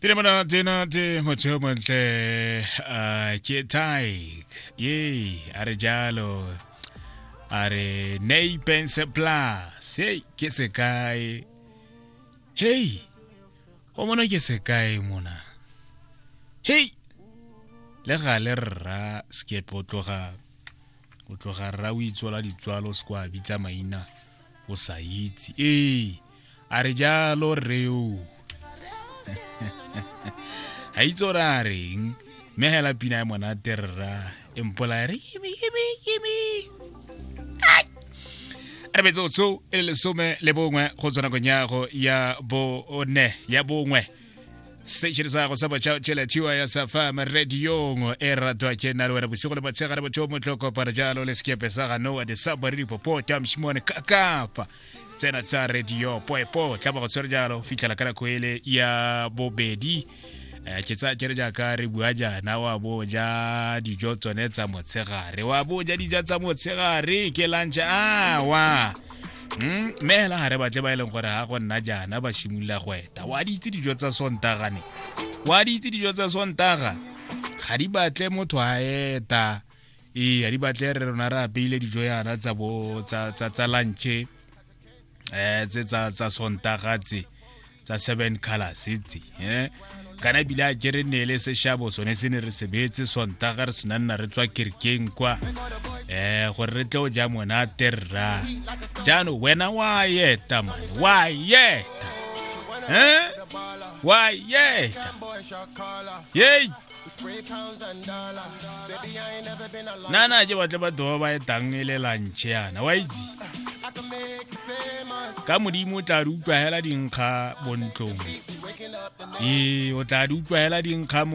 Tine mwana tena te motsheo montle uh, ke Tyke ye a re jalo a re Napens Plus hey ke sekae hey o mona ke sekae mona hey le gale rra skepe o tloga o tloga rra o itswala ditswalo se kwa bitsa maina o sa itse ee a re jalo reo ga itse gore a reng mme hela pina ya monate rra e mpola re yimi yimi yimi re metsotso e le lesome le bongwe go tswa nakong yago ya bone ya bongwe station sa go sa botšha tšheletiwa ya sa fama radiong e ratwa ke nna le wena bosigo le batshegare botho motlhoko para jalo le sekepe sa ganowa de sa bari dipopota mšimone kakapa tsena tsa radio poepo tla ba go tshwere jalo fitlhela ka nako ele ya bobedi Eh, ke tsa kere jaaka re bua jaana wa bo ja dijo tsone tsa motshegare wa bo ja dija tsa motshegare ke lunch awa Mm, mme hela ga re batle ba e leng gore ga go nna jaana ba simolola go eta wa di itse dijo tsa sontaga ne wa di itse dijo tsa sontaga ga di batle motho a eta ee a di batle re rona re apeile dijo yana tsa bo tsa tsa tsa lunch eh tse tsa tsa sontaga tse tsa seven colors tse eh kana ebile a kere ne le seshabo sone se ne re sebetse sontaga re sena nna re tswa kerkeng kwa eh gore re tle o ja monate rra jaanong wena wa yeta man wa yeta eh wa yeta yei na na je batle batho ba ba etang e le lantšhe yana wa itse ka modimo o tla re utlwa hela dinkga bontlong ee o tla re utlwa hela dinkga